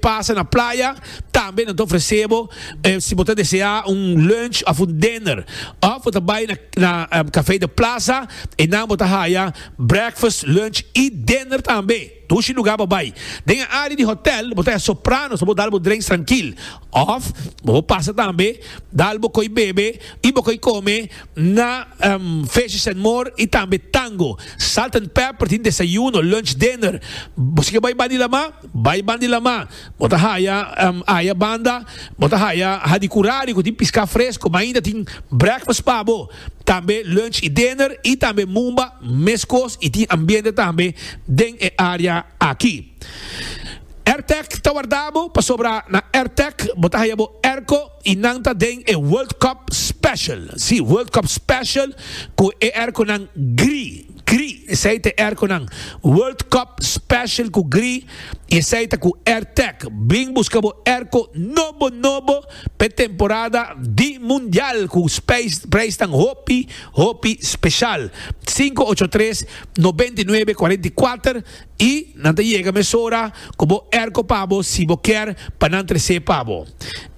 Pasa na playa, tambe nan ta ofresé bo si bo ta deseá un lunch òf un dinner. Òf bo ta bai na Café de Plaza, einan bo ta haya breakfast, lunch i dinner tambe. Dushi lugá pa bai. Den e área di hotèl bo ta haya Sopranos pa bo dal bo drenks trankil òf bo por pasa tambe dal bo koi bebe i bo koi kome na Fishes and More i tambe Tango. Salt and Pepper tin desayuno, lunch, dinner. Bo si ke bai Banilamá? Bai ban di lama, bo ta haya aya banda, bo ta haya ha di curari cu tin pisca fresco, ma ainda tin breakfast pa bo, tambe lunch y dinner y tambe mumba mescos y tin ambiente tambe den e area aki. Airtec ta wardabo pasobra na Airtec bo ta haya bo airco. Y nan ta den e World Cup Special, si, World Cup Special cu e airconan gri, gri, esey ta e airconan World Cup Special cu gri y esey ta cu Airtech. Bring busca bo airco nobo, nobo pa e temporada di Mundial cu prijsnan hopi, hopi special. Sinku ocho tres, nobenta i nuebe, kuarenta i kuater. I nan ta yega mesora ku bo erko pa bo si bo kier pa nan tres'é pa bo.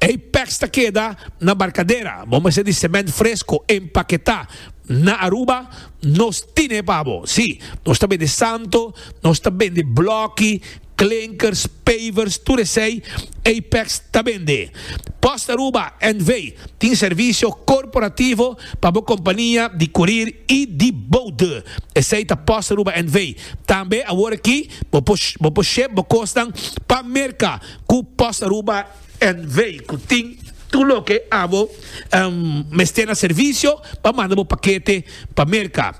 Ei pèks ta keda na barkadera, bo mester di semènt fresko empaketá. Na Aruba nos tin'é pa bo. Sí, nos ta bende santo, nos ta bende blòki, klinkers, pavers, tur esei ei pèks ta bende. Post Aruba NV. tin servisio korporativo pa bo kompania di kurir i di boude. Esei ta Post Aruba NV. Tambe awor aki bo por bo por ship bo kosnan pa Merka ku Post Aruba NV. ku tin tur loke abo mester na servisio pa manda bo pakete pa Merka.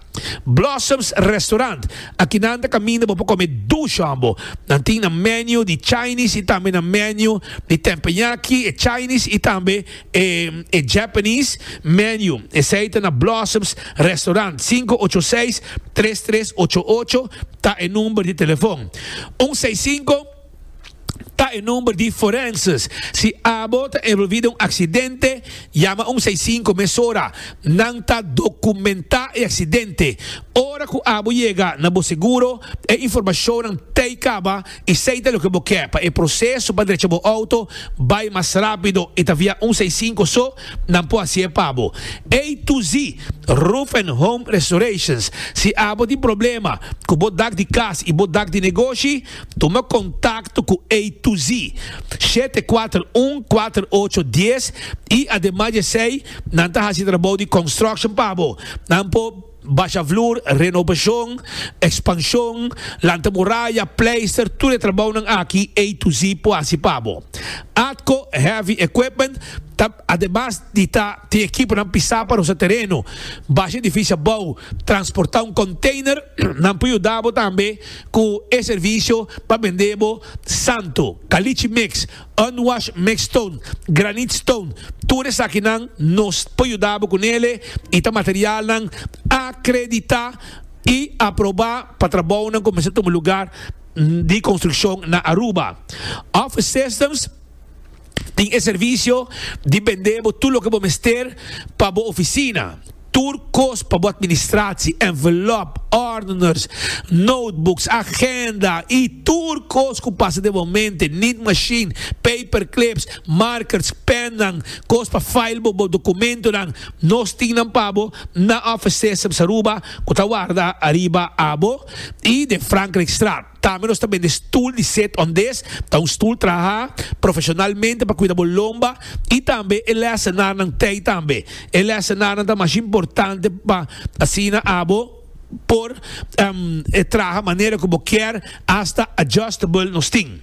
Blossoms Restaurant, Aki nan ta kaminda bo por kome dush hòmbo. Nan tin nan menu di Chinese i tambe nan menu di tempenyaki e Chinese i tambe e Japanese menu esei ta na Blossoms Restaurant sinku ocho seis tres tres ocho ocho ta e number di telefon un seis sinku ta e number di forenses si abo ta envolvi den un aksidente yama un seis sinku mesora nan ta dokumenta e aksidente ora ku abo yega na bo seguro e informashonnan tei kaba i sei ta loke bo ke pa e proseso pa drecha bo outo bai mas rapido i ta via un seisinku so nan por haci'e pa bo. A to Z Roof and Home Restorations Si abo tin problema cu bo dak di cas i bo dak di negoshi, tuma contacto cu A to Z shete kuater un kuater ocho dies i ademas di esei nan ta haci trabou di construction pa bo, nan por. Basha vloer, renobacion, expansion, lanta muraya, pleister, tur e trabounan aki A to Z por haci pa bo. Atco Heavy Equipment ta, ademas di ta tin ekiponan pisa pa rosa tereno, basha edificio abou, transporta un container, nan por yuda bo tambe cu e servicio pa bende bo Santo, Caliche Mix, Unwash mix stone, granite stone, tur esakinan nos por yuda bo ku nele i ta materialnan akreditá i aprobá pa trabounan ku mester tuma lugar di konstrukshon na Aruba. Office Systems tin e servisio di bendé bo tur loke bo mester pa bo ofisina. Tur kos pa bo administratie, envelop, ordeners, notebooks, agenda y tur kos cu pasa den bo mente, nit machine, paper clips, markers, pennan, kos pa file bo bo documentonan, nos tin nan pa bo na office systems Aruba cu ta warda ariba abo y den Frankrijk straat. Tambe nos ta bende stul di set on des, ta un stul traha profesionalmente pa kuida bo lomba y tambe e lesenarnan tey tambe. E lesenarnan ta mas importante pa asina abo por traha manera cu bo kier, hasta adjustable nos tin.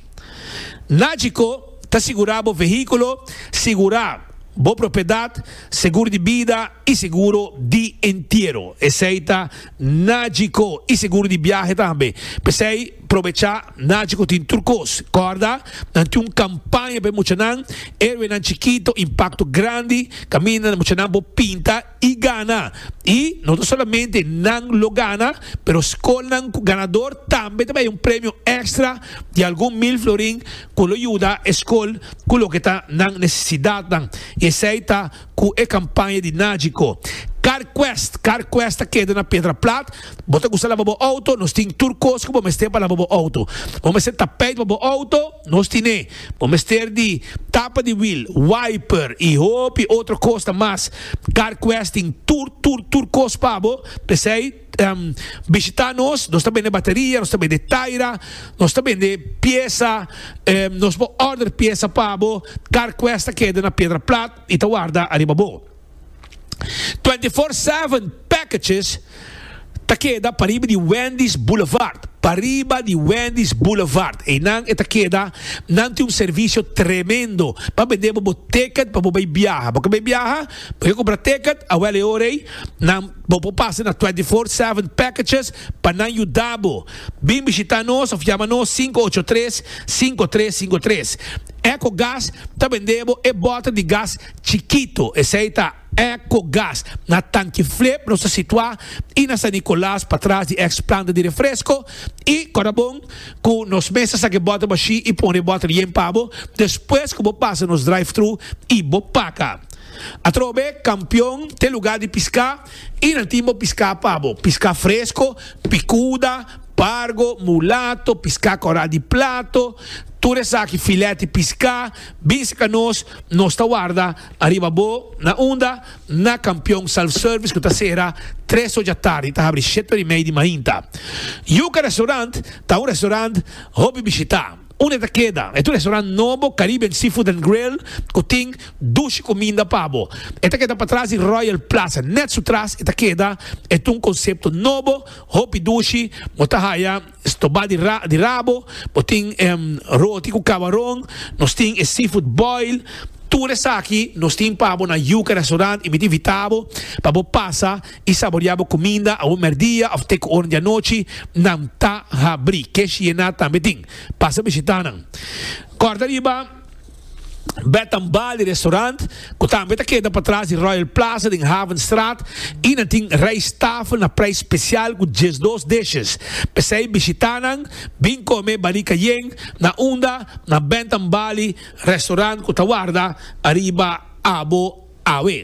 Nagico ta sigura bo vehiculo, sigura bo propiedad, segur di bida y seguro di entiero. Esey ta Najico y seguro di biahe tambe. P'esey probecha Najico tin tur cos. Corda, nan tin un campaña p'e muchanan, Héroenan Chikito, Impacto Grandi, caminda muchanan por pinta y gana. Y no ta solamente nan lo gana, pero scolnan cu ganador tambe ta bay un premio extra di algun mil florin cu lo yuda e scol cu loke ta nan necesidadnan. Y esey ta. cu e campaña di Nagico. Car Quest, Car Quest ta keda na Pedra Plat. Bo ta gusta laba bo auto? Nos tin tur cos cu bo mester pa laba bo auto. Bo mester tapijt pa bo auto? Nos tin'e. Bo mester di tapa di wiel, wiper y hopi otro cosnan mas. Car Quest tin tur, tur, tur cos pa bo. P'esey. um, bishita nos, nos ta bende bateria, nos ta bende taira, nos ta bende piesa, um, nos bo order piesa pa bo, car quest ta keda na piedra plat y ta warda ariba bo. 24-7 packages ta keda pariba di Wendy's Boulevard. Pariba di Wendy's Boulevard. E nan e ta keda, nan tin un servicio tremendo. Pa bende bo ticket pa bo bay viaja. Bo ka bay viaja, bo ka compra ticket, awel e orei, nan Bo por pasa na Twenty Four Seven Packages pa nan yuda bo. Bin bishita nos of yama nos sinku ocho tres, sinku tres sinku tres. Echo Gas ta bende bo e bota di gas chikito, esei ta Echo Gas. Na Tanki Flip nos ta situa i na San Nicolas patras di ex planta di refresco i Corabon cu nos mes ta saca e bota bashi i pone e bota yen pa bo despues cu bo pasa nos drive-thru i bo paca. Atrobe kampion te lugá di piská i nan tin bo piská pa bo, piská fresko, pikuda, pargo, mulato, piská kòrá di plato, tur esaki filèt di piská, bin sika nos, nos ta warda ariba bo, na unda? Na kampion self service ku ta sera tres ocha tardi i ta habri shete ora i mei di mainta. Yuka Restaurant ta un restaurant hopi bishitá. Un e ta keda e tur restaurant nobo Caribbean Seafood and Grill ku tin dushi kuminda pa bo. E ta keda patras di Royal Plaza. Nèt su tras e ta keda e ta un konsepto nobo, hopi dushi, bo ta haya stobá di ra di rabo, bo tin roti ku kabaron, nos tin e seafood boil, tur esaki nos tin pa bo na Yuca Restaurant y mi ta invitá bo pa bo pasa i saboreá bo kuminda awor mèrdia òf te ku oren di anochi, nan ta habrí. Ke Shiena tambe tin. Pasa bishitá nan. Kòrda riba Bed and Bali Restaurant, ku tambe ta keda patras di Royal Plaza den Havenstraat, i nan tin rijsttafel na preis spesial ku diesdos dishes. P'esei bishitá nan, bin kome Bali Cayenne na unda na Bed and Bali Restaurant ku ta warda ariba abo awe.